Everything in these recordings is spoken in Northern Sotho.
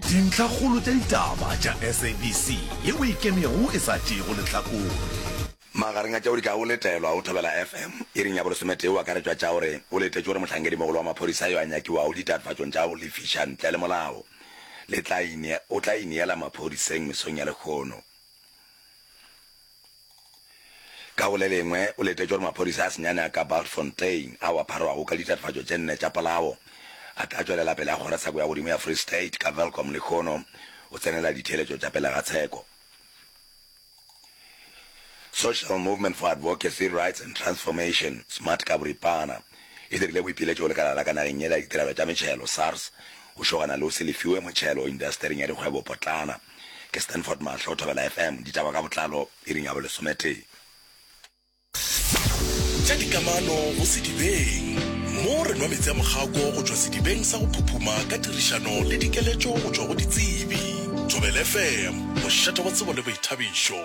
Dintlhakgolo tša ditaba tša SABC ye o e kemego e sa tšeego lehlakore. Magareng a tšeo di ka go letelwa o thobela FM, iring ya bolesometee o akaretšwa tša gore o letetšwe gore mohlankedimogolo wa maphodisa yo a nyakiwago ditatofatšong tša go lefiša ntle le molao le tla o tla ineela maphodiseng mesong ya lehono. Ka go le lengwe, o letetše gore maphodisa a senyane a ka Bultfontein, ao a pharwago ka ditatofatšo tše nne tša polao, a tla tšwelela pele a kgora tsheko ya godimo ya Free State ka Welkom lehono o tsenela ditheeletšo tša pele ga tsheko. Social Movement for Advocacy, Rights and Transformation, smart ka boripana, e dirile boipiletšo go lekala la ka nageng ye la ditirelo tša metšhelo, SARS, go šogana le go se lefiwe motšhelo indastering ya dikgwebopotlana. Ke Stanford Mahlo, Thobela FM, ditaba ka botlalo, iring ya bolesometee. Tša dikamano go sedibeng, mo re nwa meetse a mogako go tšwa sedibeng sa go phuphuma ka tirišano le dikeletšo go tšwa go ditsebi. Thobela FM, mošate wa tsebo le boithabišo.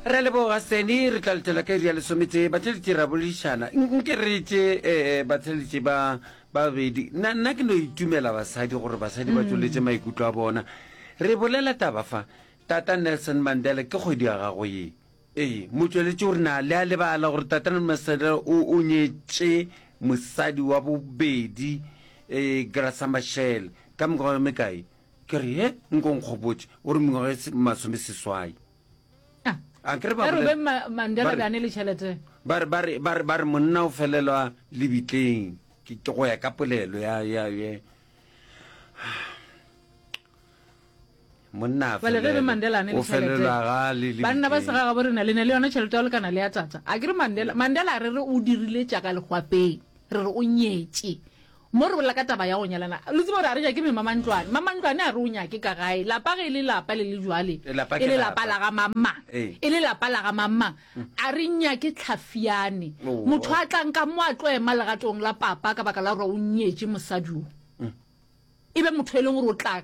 Re a leboga Seni, re tla letela ka iri ya lesometee. Batheletši re a boledišana. Nke re tše batheletši ba Babedi, nna, nna ke no itumela basadi gore basadi ba tšweletše maikutlo a bona. Re bolela taba fa. Tata Nelson Mandela, ke kgwedi ya gago ye. Ee, motšweletši o re na le a lebala gore Tata Nelson Mandela o, o nyetše mosadi wa bobedi, ee, Graça Machel, ka mengwaga e mekae? Ke re, He, nko nkgopotše, o re mengwaga e masomeseswai. a kere ba re mandela ba ne le chelete ba re ba re ba re ba re monna o felelwa lebitleng ke ke go ya ka polelo ya ya ye monna a fele re mandela ne le chelete ba nna ba sega ga bo rena le ne le yona chelete ya lekana le ya tata a kere mandela mandela re re o dirile tša ka legwapeng re re o nyetše Mo re bolela ka taba ya go nyalana, lo tseba gore a re nyake me Mamantlwane. Mamantlwane a re o nyake ka gae. Lapa ge e le lapa le le jwale, Lapa ke e le lapa lapa. la ga mang-mang. Ee. E le lapa la ga mang-mang. A re nyake Tlhafiane. Oo. Motho a tlang ka mo a tlo ema legatong la papa ka baka la gore o nyetše mosadi o. E be motho e leng gore o tla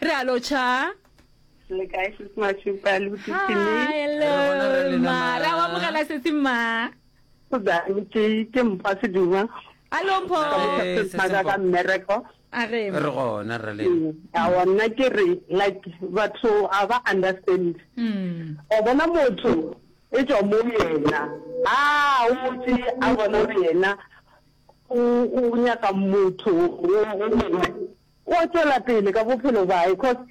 re a lotšha le kae se semašupa le botisimara wa mogela setse mma ke ke mpha seduma alomphoaka mmereko re gona re le mm, a wona ke re like batho a ba understand mm. o bona motho e tswa mo yena a o motse a bona yena o nyaka motho o mongwe O a tšwela pele ka bophelo bae cause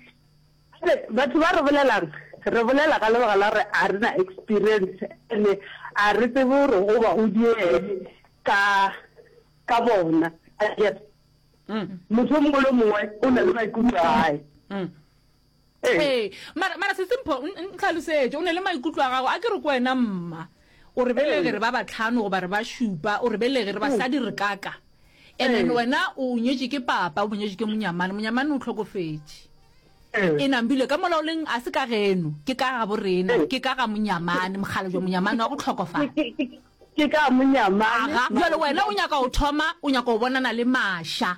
a re batho ba re bolelang re bolela ka lebaka la gore a re na experience ene a re tsebe gore go ba o diele ka ka bona a get motho o mongwe le mongwe o na le maikutlo a hae Ee, mara, mara Sesi Mpho, n- n- ntlhalosetše, o ne le maikutlo a gago, a ke re ko wena mma, o re belege re ba batlhano goba re ba šupa, o re belege re basadi re kaka. And then Ee. wena o nyetše ke papa, o nyetše ke monyamane, monyamane o tlhokofetše. Ee. E nambile ka mola o leng, a se ka geno, ke ka gabo rena, Ee. ke ka ga monyamane, mogala jwa monyamane wa go tlhokofala. Ke- ke- ke- ke ka monyamane Aga, jwale wena o nyaka go thoma, o nyaka go bonana le Masha.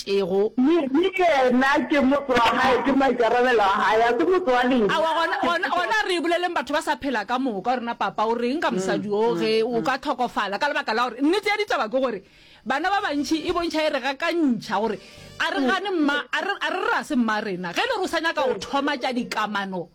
Ego. Le, le yena ke motse wa gae, ke maikarabelo a gae, ga se motse wa lena. Aowa, gona, gona, gona re boleleng batho ba sa phela ka moka, rena papa, o reng ka mosadi o ge o ka hlokofala, ka lebaka la gore nnete ya ditaba ke gore bana ba bantši e bontšha e re gakantšha gore a re gane mma, a re, a re rase mma rena ge e le gore o sa nyaka go thoma tša dikamano.